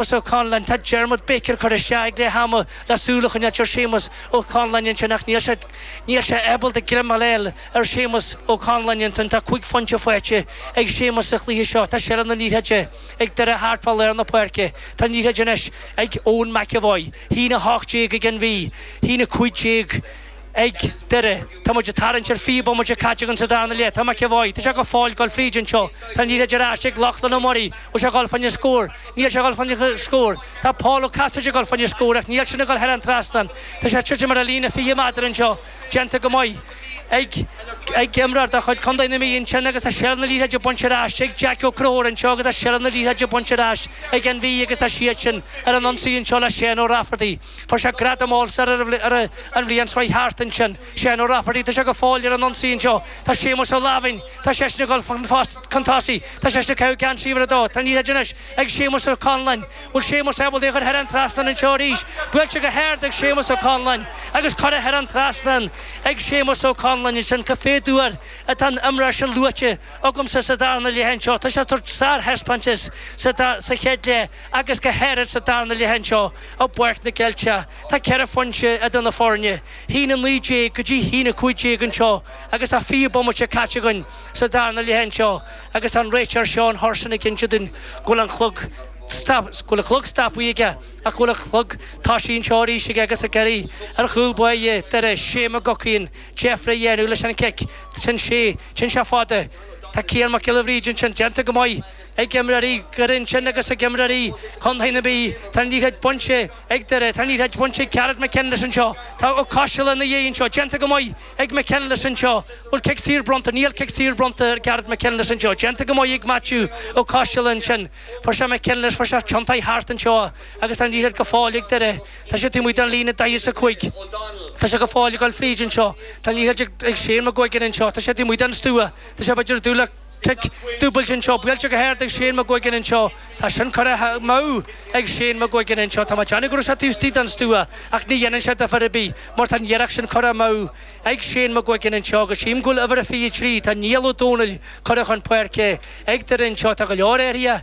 Séamus Ó Conláin, Tá Diarmuid Baker curtha isteach ag leath ama le súil a choinneáilt ar Shéamus Ó Conláin ansin ach níl sé níl sé ábalta greim a fháil ar Shéamus Ó Conláin ansin tá cúig phointe faighte ag Séamus sa chluiche seo. Tá seilbh na liathróide ag Doire thart fá lár na páirce. Tá an liathróid anois ag Eoin McEvoy. A haon 18 ag an Mhí. A haon 15. Ag Doire, tá muid ag tarraingt ar fiche bomaite caite againn sa darna leath. Tá McEvoy. Tá sé go fóill ag dul fríd anseo. Tá an liathróid ar ais ag Lochlainn Ó Muirí. Bhfuil sé ag dul fá choinne scór? Níl sé ag dul fá choinne scór. Tá Paul Ó Casaide ag dul fá choinne scór ach níl sin ag dul thar an trasnán. Tá sé ag titim ar an líne 20 méadar anseo, déanta go maith ag ag imreoir de chuid Chontae na Mí ansin agus tá Seilbh na Liathróide bainte ar ais ag Jack Ó Conchúir anseo agus tá Seilbh na Liathróide bainte ar ais ag an Mhí agus tá siadsan ar an ionsaí anseo le Seán Ó Rafferty. Fuair sé gradam All Star an bhliain seo thart ansin. Seán Ó Rafferty tá sé go fóill ar an ionsaí anseo. Tá Séamus Ó Laimhin, tá seisean ag dul chun tosaigh, tá seisean ag caitheamh geansaí uimhir a dó. Tá an liathróid anois ag Séamus Ó Conláin. Bhfuil Séamus ábalta é a chur thar an trasnán anseo arís? Buailte go hard ag Séamus Ó Conláin agus curtha thar an trasnán ag Séamus Ó Conláin ansin. Cá mhéad uair atá an t-imreoir sin luaite agamsa sa darna leath anseo. Tá sé ag tabhairt sárthaispeántas sa chéad leath agus go háirid sa darna leath anseo. I bPáirc na gCeilteach tá ceithre phointe idir na foirne, a haon 19 go dtí a haon 15 anseo agus tá 20 bomaite caite againn sa darna leath anseo agus tá an réiteoir Seán Hurson ag inse duinn go bhfuil a chlog go bhfuil a chlog stopaithe aige ach go bhfuil a chlog toisithe anseo arís aige agus ag iarraidh ar chúl báire Doire, Shea McGuckin, deifre a dhéanamh leis an chic. Téann sé, téann sé fada. Tá Cian Mac Giolla Bhríde ansin, déanta go maith. ag imreoirí Dhoire ansin agus ag imreoirí contae na Mí tá an liathróid bainte ag Doire, tá an liathróid bainte ag Gareth McKinless anseo, tá Ó Coistealbha ina dhiaidh anseo, déanta go maith ag McKinless anseo, bhfuil cic saor bronnta, níl cic saor bronnta ar Gareth McKinless anseo, déanta go maith ag Maitiú Ó Coistealbha ansin, fuair sé McKinless, fuair sé é a thiontú thart anseo agus tá an liathróid go fóill ag Doire, tá siad taobh amuigh den líne daichead is a cúig, tá sé go fóill ag dul fríd anseo, tá an liathróid ag Shane McGuigan anseo, tá sé taobh amuigh den stua, tá sé b'fhéidir ag dul le. Cic dúbailte anseo, buailte go hard ag Shane McGuigan anseo, tá sin curtha amú ag Shane McGuigan anseo, tá mé déanamh go raibh sé taobh istigh den stua ach ní dhéanann sé difear ar bith mar tá an iarracht sin curtha amú ag Shane McGuigan anseo agus sílim go bhfuil uimhir a fiche a trí, tá Niall Ó Dónaill curtha chun páirce ag Doire anseo, tá go leor athruithe.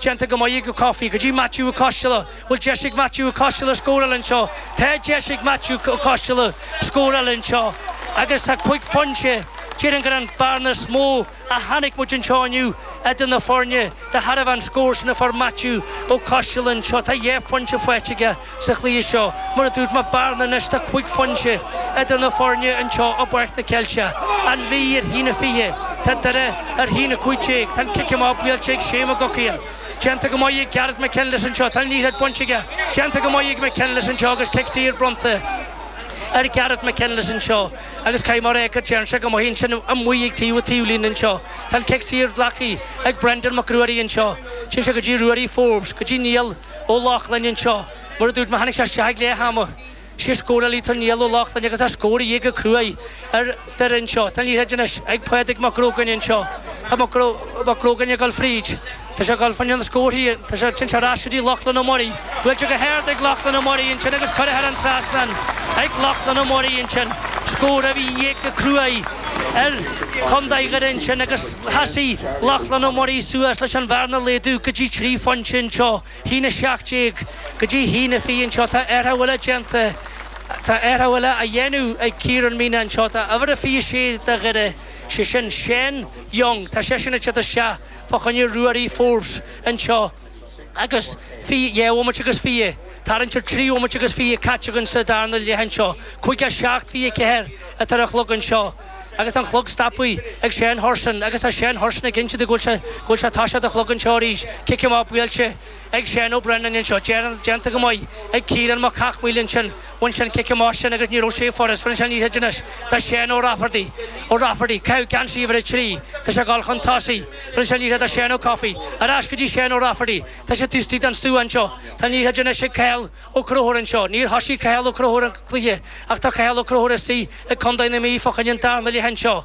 Déanta go maith ag Ó Cofaigh go dtí Maitiú Ó Coistealbha. Bhfuil deis ag Maitiú Ó Coistealbha scór eile anseo. Tá deis ag Maitiú Ó Coistealbha scór eile anseo agus tá cúig phointe. Déarfainn gur an bearna is mó a chonaic muid anseo inniu idir na foirne de thairbhe an scór sin a fuair Maitiú Ó Coistealbha anseo. Tá dhá phointe faighte aige. Sa chluiche seo, mar a dúirt mé a Bháirne anois tá cúig phointe idir na foirne anseo i bPáirc na Ceilte, An Mhí ar a haon a fiche, tá Doire ar a haon a cúig déag, tá an cic amach buailte ag Shane McGuckian. Déanta go maith ag Gareth McKinless anseo, tá an liathroid bainte aige, déanta go maith ag McKinless anseo agus cic saor bronnta ar Gareth McKinless anseo agus cad é mar go déann sé go maith ansin amuigh ag taobh an taobhlíne anseo, tá an cic saor glactha ag Brendan Mac Ruairí anseo, téann sé go dtí Ruairí Forbes, go dtí Niall. Ó Lochlainn anseo. Mar a dúirt mé, tháinig sé isteach ag leath ama. Is é a scóráil Niall Ó Lochlainn agus tá scór de dhíth go cruaidh ar Dhoire anseo. Tá an liathroid anois ag Pádraig Mac Grógáin anseo. Tá Mac Grógáin ag dul fríd. Tá sé ag dul fan an scórthaí. Tá sé sin sé ar ais go dtí Lochlainn Ó Muirí. Buailte go hard ag Lochlainn Ó Muirí ansin agus curtha thar an trasnán ag Lochlainn Ó Muirí ansin. Scór de dhíth go cruaidh ar Chontae Dhoire ansin agus. Sheasaigh Lachlan Ó Muirí suas leis an bhearna a laghdú go dtí trí phointe anseo, a haon a 17, go dtí a haon a 20 anseo, tá athrú eile déanta, tá athrú eile á dhéanamh ag Ciarán Meenagh anseo, tá uimhir 26 de Dhoire, sé sin Seán Young, tá seisean ag teacht isteach fá choinne Ruairí Forbes anseo. agus dhá bhomaite agus fiche ag tarraingt ar trí bhomaite agus fiche caite againn sa darna leath anseo. Caoga seacht fiche ceathair atá ar an chlog anseo agus an clog stoptha ag Seán Hurson agus tá Seán Hurson ag insint go bhfuil sé ag tosú an chlog anseo arís cic amach buailte ag Sean Ó Brennan anseo déanta go maith ag Ciarán Mac Cathmhaoil ansin bhain sé an cic amach sin agus ní raibh sé furast bhain sé í ansin anois tá Sean Ó Rafferty Ó Rafferty ag caitheamh geansaí uimhir a trí tá sé ag dul chun tosaigh. Roinn sé an liathróid le Seán Ó Cofaigh ar ais go dtí Seán Ó Rafferty. Tá sé taobh istigh den stua anseo. Tá liathróid anois ag Cathal Ó Crothúir anseo. Níor thosaigh Cathal Ó Crothúir an cluiche ach tá Cathal Ó Crothúir istigh ag Contae na Mí fá choinne an darna leath anseo.